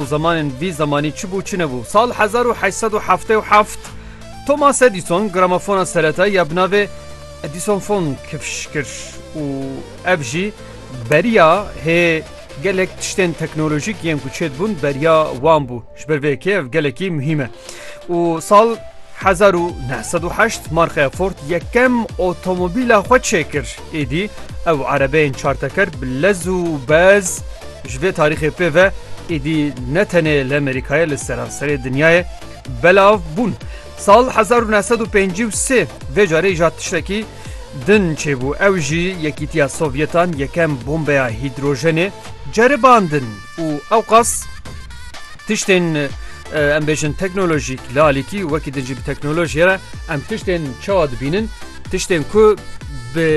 Zemanên vî zemanî çi bû çi nebû? Sal hezar û heşt sed û heftê û heft Thomas Edison gramofona seretayî ya bi navê Edisonfon kifş kir û ev jî beriya hê gelek tiştên teknolojîk yên ku çêdibûn beriya wan bû. Ji ber vê yekê ev gelekî muhîm e. Û sal hezar û neh sed û heşt markaya Ford yekem otomobîla xwe çêkir. Êdî ew erebeyên çarteker bi lez û bez ji vê tarîxê pê ve êdî ne tenê li Amerîkayê li seranserê dinyayê belav bûn. Sal hezar û neh sed û pêncî û sê vê carê îjad tiştekî din çêbû ew jî Yekîtiya Sovyetan yekem bombeya hîdrojenê ceribandin. û ewqas tiştên em bêjin teknolojîk li alîkî wekî din jî bi teknolojiyê re em tiştên çawa dibînin tiştên ku bi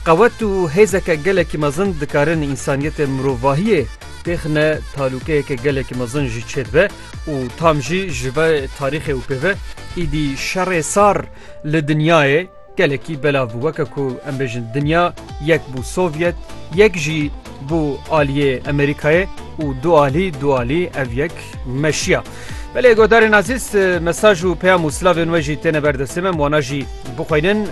qewet û hêzeke gelekî mezin dikarin însaniyetê mirovahiyê têxine talûkeyeke gelekî mezin jî çêdibe û tam jî ji ve tarîxê û pêve îdî şerê sar li dinyayê Gelekî belav bû weke ku em bêjin dinya yek bû Sovyet, yek jî bû aliyê Amerîkayê û du alî du alî ev yek meşiya. Belê godarên azîz mesaj û peyam û silavên we jî têne ber destê me em wana jî bixweynin.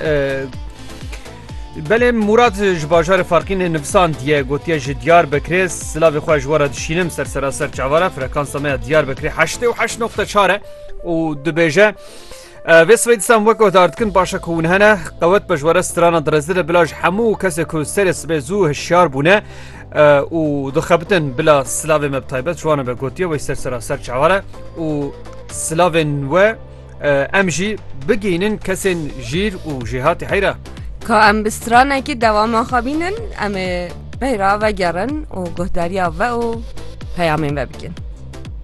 Belê Murad ji bajarê farqînê nivsandiye gotiye ji diyar bekirê silavê xwe ji wara dişînim ser seraser çavara frekansa me ya diyar bekirê heştê û heşt noqte çar e û dibêje Vê sibê dîsan wek guhdar dikin baş e ku hûn hene qewet pejwere strana direzdir e bila ji hemû kesê ku serê sibê zû hişyar bûne û dixebitin bila silavê me bi taybet ciwane be gotiye wê ser seraser çaware û silavên we em jî bigihînin kesên jîr û jêhatî heyra. Ka em bi stranekî dewama xebînin em ê peyra vegerin û guhdariya ve û peyamên ve bikin.